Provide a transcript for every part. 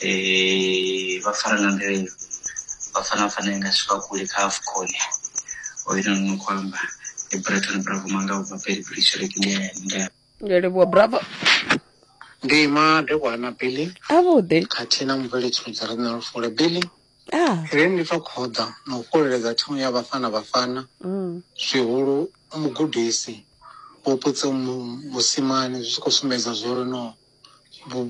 eh, vha fara nga nḓila iyo vha fana fana nga swika kule kha afcon oyo no no khou amba ndi breton bravo manga ubva peli brishorek ndi ya- ndi ya- ndi a livhuwa bravo ndi madekwa na billy avhuḓi khathihi na mubveledzi mudzi re na lufule billy ah ri ndi to khoḓa na u fhololedza thimu ya vhafana vhafana mm. zwihulu mugudisi vhuputse mu- musimane zwi tshi khou sumbedza zwori no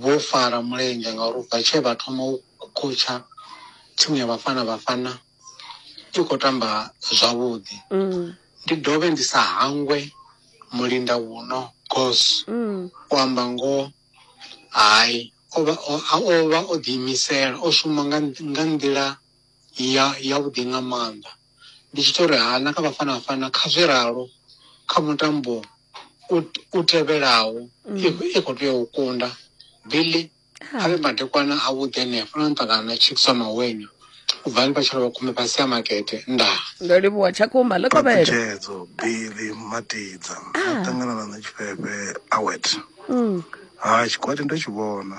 vho fara mulenzhe ngauri ubva tshee vha thoma u khotshha thimu ya vhafana vhafana i khou tamba zwavhuḓi mm. ndi dovhe ndi sa hangwe mulinda wuno gos mm. u amba ngoho hai o vha o ḓiimisela o shuma nga nḓila ya vhuḓi nga maanḓa ndi tshi tou ri hana kha Bafana Bafana kha zwi ralo kha mutambo u tevhelaho i khou tea u kunda Billy a vhe madekwana a vhuḓi henefho na nṱangana na Chiefs wa Mawenya u bva vha tshilo vha khumbe fhasi ya makete ndaa ndo livhuwa tshakumba ḽi kovhela tshedzedzo Billy Matidza a ah. ṱangana na nṋe tshifhefhe awet mm. ha tshikwati ndo tshi vhona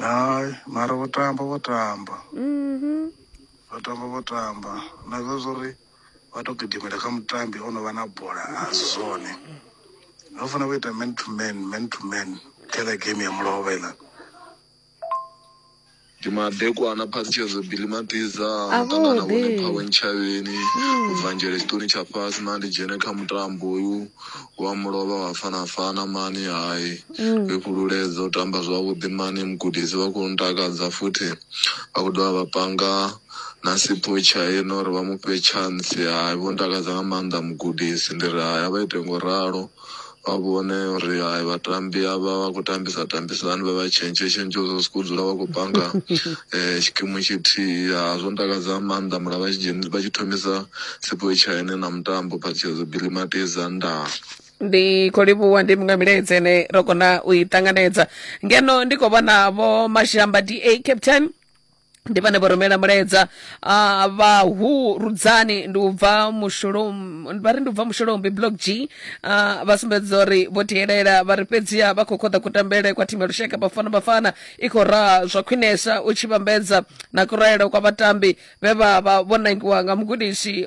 hai mara vho tamba vho tamba mhm. vho tamba vho tamba na zwa zwo ri vha tou gidimela kha mutambi o no vha na bola a si zwone vha fanela vha ita man to man man to man kha ḽa game ya mulovha iḽa ndi madekwana phatshedzo bili matiza muṱangana vhone phawe ntshavheni ubva hmm. nzhele tshiṱoni tsha fhasi na ndi dzhene kha mutambo uyu Wa mu lovha wa fa na fana mani hai ri fhululedze u tamba zwavhuḓi mani mugudisi vha khou ntakadza futhi vha khou dovha vha panga na sipho tshaina uri vha mufhe tshantsi hai vho ntakadza nga maanḓa mugudisi ndi ri hai a vha ite ngo ralo vha vhone uri hai vhatambi avha vha khou tambisa tambisa hani vha vha tshentshe tshentshe uri ri si khou dzula vha khou banga um tshikimu tshithihi ha zwo ntakadza nga maanḓa mara vha tshi dzheni vha tshi thomisa Sipho China na mutambo phatshedzo Billy Mateza ndaa. ndi khou livhuwa ndi muṅwe milaedza ine ro kona u i ṱanganedza ngeno ndi khou vhona vho mashamba da captain ndi vhane vho rumela mulaedza uh, vhahu rudzani ndi u bva mushulom vha ri ndi u bva mushulombi block g uh, vha sumbedza uri vho tielela vha ri fhedziha vha khou khoḓa kutambele kwa thimu ya lushaka bafana bafana i khou raha zwa khwinesa u tshi vhambedza na kuraele kwa vhatambi vhe vha vha vho nangiwa nga mugudisi